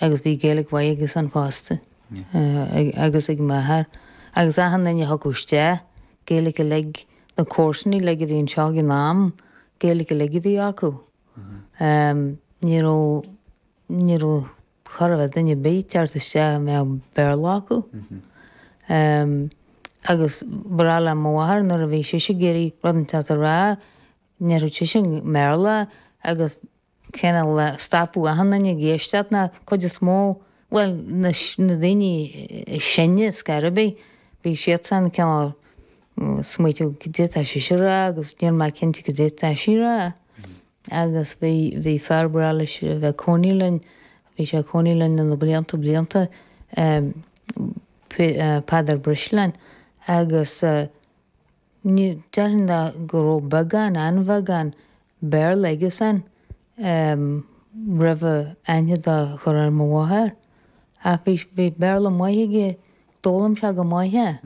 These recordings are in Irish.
agus bhí Gaeilge mhaith aigesan fosta, agus ag m'athair, agus achan duine a thiocfadh isteach Gaeilge uilig, na comharsain uilig a bhí anseo ag an am, Gaeilge uilig a bhí acu. Ní raibh, ní raibh, cha raibh duine ar bith ag teacht isteach a mbeadh Béarla acu. Agus ba bhreá le mo mháthair nuair a bhí sise ag iarraidh rud inteacht a rá, ndéarfadh sise i mBéarla agus, cineál stopfadh achan duine ag éisteacht na cuid is mó, bhuel, na, na daoine is sine, ar scor ar bith, bhí siadsan cineál ag smaoiteamh cad é atá sise a rá agus níl mé cinnte cad é atá sí a rá. Agus bhí, bhí fear ba ghnách leis a bheith ag cónaí linn, bhí sé ag cónaí linn le na blianta blianta, Peadar Brisleáin agus, Ní déarfainn dá go raibh beagán, an-bheagán, Béarla aige-san roimh a aithne do chur ar mo mháthair. Ach bhí, bhí Béarla maith aige, d'fhoghlaim sé go maith é.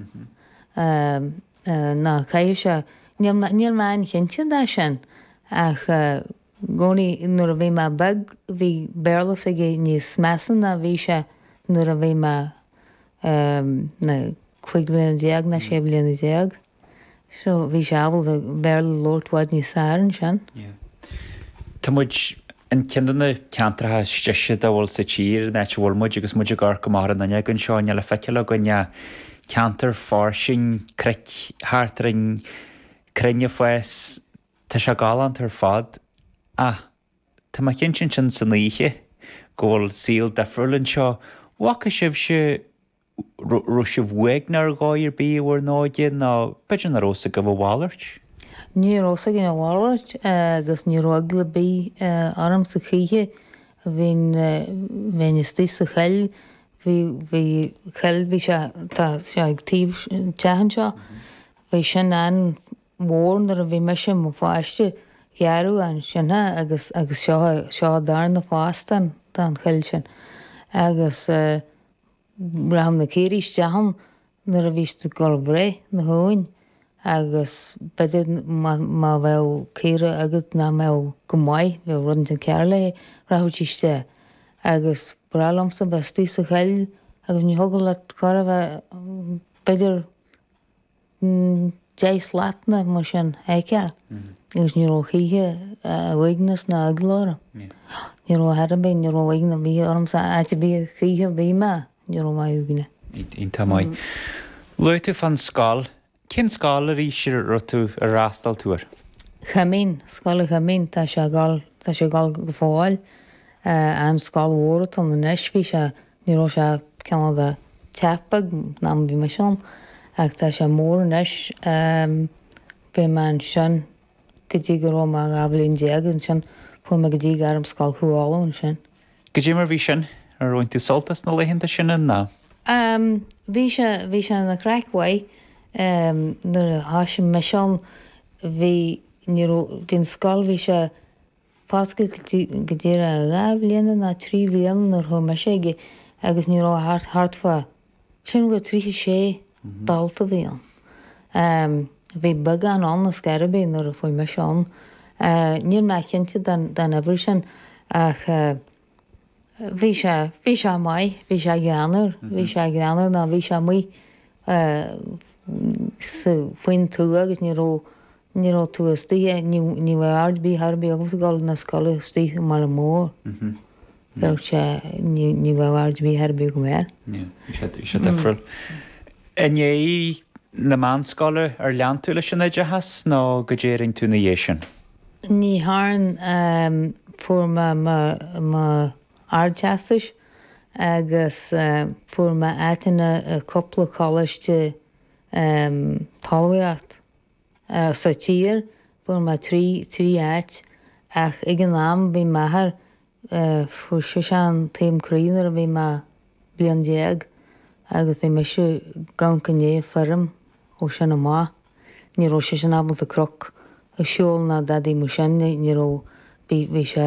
Ná caithfidh sé, níl mé, níl mé an-chinnte de sin ach. gcónaí nuair a bhí mé beag, bhí Béarla s'aige níos measa ná bhí sé nuair a bhí mé na cúig bhliana déag ná sé bhliana déag. So bhí sé ábalta Béarla a labhairt i bhfad níos fearr ansin. Yeah. Tá muid i gceann de na ceantracha is deise dá bhfuil sa tír, an áit a bhfuil muid, agus muid ag amharc amach ar an fhuinneog anseo, níl le feiceáil againn ach ceantar fairsing, cnoic thart orainn, crainn ag fás, Tá sé galánta ar fad. Ach tá mé cinnte ins an oíche go bhfuil saol difriúil anseo. bhfaca sibhse, raibh sibh uaigneach ar dhóigh ar bith i bhur n-óige nó b'fhéidir nach raibh a fhios agaibh a mhalairt? Ní raibh a fhios againn a mhalairt agus ní raibh eagla ar bith ormsa choíche. Bhínn, bheinn istigh sa choill, bhí, bhí coill, bhí sé, tá sé ag taobh teach anseo, bhí sin an, mhór nuair a bhí mise i mo pháiste, gearradh ansin é agus agus seo seo an darna fás den den choill sin agus eh rachadh na caoirigh isteach ann nuair a bhí siad ag gabháil a bhreith na huain agus b'fhéidir má má bheadh caora agat nach mbeadh go maith, bheadh rud inteacht cearr léi, rachadh sí isteach agus ba bhreá liomsa a bheith istigh sa choill agus ní thiocfadh leat cor a bheith b'fhéidir deich slat nó mar sin fheiceál agus ní raibh choíche uaigneas ná eagla orm. Ní raibh thar a bheith, ní raibh uaigneas ar bith ormsa áit ar bith choíche a bhí mé, ní raibh mé uaigneach. Iontach maith. Luaigh tú fan scoil. Cén scoil arís a raibh tú, a fhreastail tú air? Coimín, Scoil an Choimín, tá sé ag dul, tá sé ag dul go fóill. An scoil mhór atá ann anois, bhí sé Ní raibh sé cineál de teach beag an am a bhí mise ann ach tá sé mór anois. Bhí mé ansin go dtí go raibh mé dhá bhliain déag ansin chuaigh mé go dtí Gairmscoil Chú Uladh ansin. Caidé mar bhí sin? Ar bhain tú sult as na laethanta sin an ná? Bhí sé, bhí sé ina chraic mhaith. Nuair a thoisigh mise ann bhí, ní raibh, bhí an scoil, bhí sé foscailte go díreach dhá bhliain nó trí bhliana nuair thug mise ag agus ní raibh thart thart fá sin go tríocha sé dalta bhí ann. Bhí beagán ann ar scor ar bith nuair a chuaigh mise ann. Níl mé cinnte den uimhir sin ach. Bhí sé, bhí sé maith, bhí sé greannmhar, bhí sé greannmhar nó bhí sé amuigh sa, faoin tuath agus ní raibh, ní raibh tú istigh i, ní, ní bheadh aird ar bith, thar ar bith agamsa dhul na scoile istigh i mbaile mór. Bheadh sé, ní, ní bheadh aird ar bith, thar ar bith agam air. Yeah, bhí sé, bhí sé difriúil. I ndiaidh na meánscoile ar lean tú leis an oideachas nó caidé a rinn tú ina dhiaidh sin? Ní dhearn fuair mé mo Ardteastas agus fuair mé áiteanna i cúpla coláiste talmhaíocht sa tír, fuair mé trí áit ach ag an am bhí m'athair Fuair seisean taom croí nuair a bhí mé bliain déag agus bhí mise i gceann na feirme ó sin amach. Ní raibh seisean ábalta cnoc a siúl ná dadaidh mar sin ní raibh bhí sé